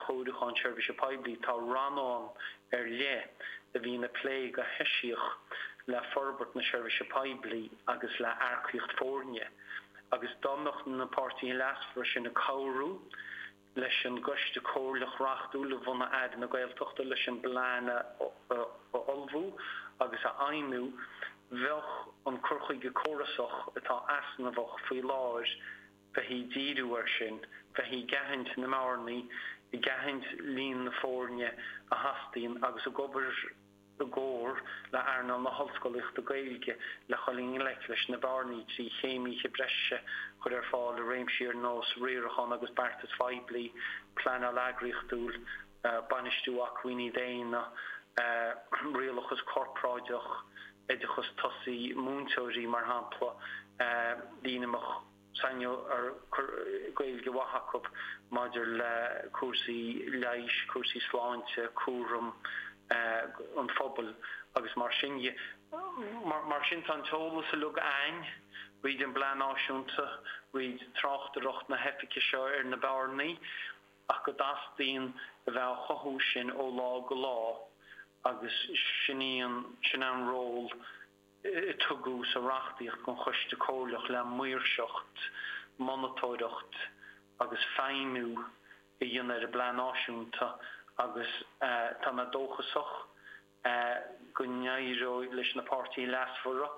Ceapacháin Seirbhíse Poiblí, tá rannán ar leith a bhíonn ag plé go heisiach le forbairt na seirbhíse poiblí agus le hearcaíocht foirne, agus dá mbeadh na páirtithe leasmhara sin ag cabhrú leis an gCoiste Comhairleach Reachtúil a bhunaigh Aire na Gaeltachta leis an bplean a ullmhú agus a fheidhmiú, bheadh an cur chuige córasach atá easnamhach faoi láthair. bheith ag díriú air sin, bheith ag aithint na mbearnaí, ag aithint líon na foirne a theastaíonn agus ag obair i gcomhar le earnáil na hOllscolaíochta Gaeilge le dhul i ngleic leis na bearnaí trí chéimithe breise a chur ar fáil i réimsí ar nós riarachán agus beartas phoiblí, pleanáil eagraíochtúil. bainistiú acmhainní daonna, rialachas corparáideach, oideachas tosaigh, múinteoirí, mar shampla, daoine a mbeadh sainiúlacht Gaeilge mhaith acu maidir le cúrsaí leighis, cúrsaí sláinte, cúram, an phobail agus mar sin de. Mar sin tá an t-eolas uilig ann thríd an bPlean Náisiúnta thríd, tráchtaireacht na hoifige seo ar na bearnaí, ach go dteastaíonn a bheith á chothú sin ó lá go lá agus sin é an ról a tugadh sa reachtaíocht don Choiste Comhairleach le maoirseacht, monatóireacht agus feidhmiú a dhéanamh ar an bPlean Náisiúnta agus tá mé dóchasach go n-éireoidh leis na páirtithe leasmhara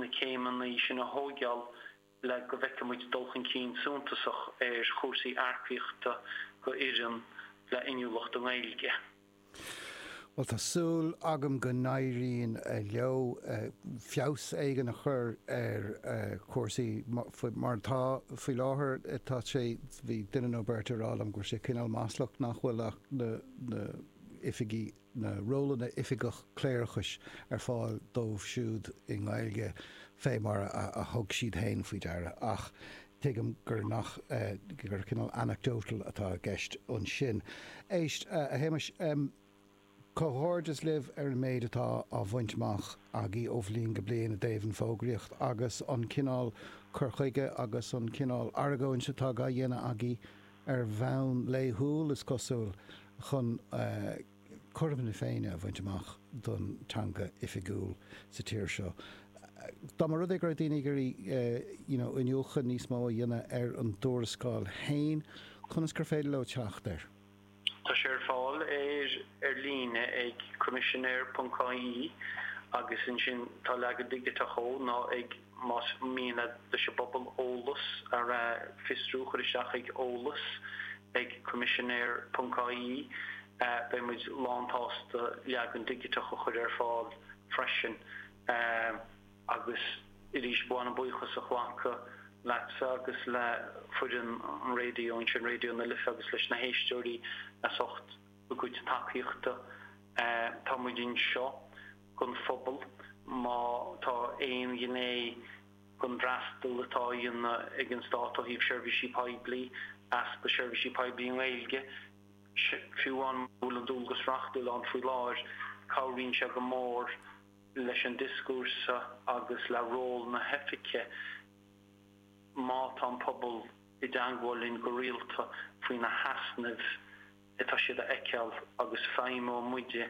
na céimeanna sin a thóigeáil le go bhfeice muid dul chun cinn suntasach ar chúrsaí earcaíochta do fhoireann le inniúlacht i nGaeilge. Bhuel tá súil agam go n-éiríonn leo feabhas éigin a chur ar chúrsaí mar atá faoi láthair. Tá sé, bhí duine nó beirt ag rá liom go bhfuil sé cineál maslach nach bhfuil ach na hoifigí na rólanna oifigeach cléireachais ar fáil dóibh siúd i nGaeilge fé mar a thug siad féin faoi deara ach tuigim gur nach, gur cineál anecdotal atá i gceist ansin. Éist, a Shéamais, comhghairdeas libh ar an méid atá á bhaint amach agaí ó bhliain go bliain i dtaobh an fógraíocht agus an cineál cur chuige agus an cineál argóint atá á dhéanamh agaí ar bhonn laethúil, is cosúil, chun cothrom na Féinne a bhaint amach don teanga oifigiúil sa tír seo. Dá mba rud é go raibh daoine ag iarraidh you know iniúchadh níos mó a dhéanamh ar an dtuarascáil féin, conas gur féidir leo teacht air? Tá sé ar fáil ar ar líne ag coimisinéir ponc ie agus ansin tá leagan digiteach ó nó ag. Más mian leis an bpobal eolas a fhiosrú cur isteach ag eolas ag coimisinéir.ie. Beidh muid lánsásta leagan digiteach a chur ar fáil freisin. Agus arís, ba mhaith liom buíochas a ghlacadh leatsa agus le foireann an raidió anseo i Raidió na Life agus leis na héisteoirí as ucht a gcuid tacaíochta. Tá muid anseo don phobal, má tá aon ghné den fhreastal atá a dhéanamh ag an Stát ó thaobh seirbhísí poiblí, easpa seirbhísí poiblí i nGaeilge, fiú mura bhfuil an dualgas reachtúil ann faoi láthair, cabhraíonn sé go mór leis an dioscúrsa agus le ról na hoifige má tá an pobal i dteangmháil linn go rialta faoi na heasnaimh atá siad a fheiceáil agus feidhmeoidh muide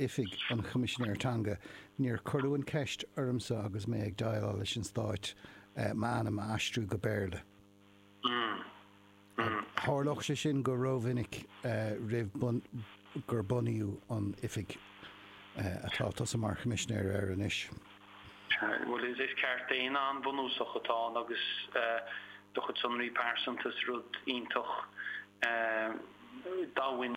Oifig an Choimisinéir Teanga, níor cuireadh an cheist ormsa agus mé ag déileáil leis an Stát m'ainm a aistriú go Béarla. Tharlódh sé sin go rómhinic roimh gur bunaíodh an oifig atá tusa mar Choimisinéir air anois. Bhuel, is ceart daonna an-bhunúsach atá ann agus do chuid sonraí pearsanta is rud iontach domhain.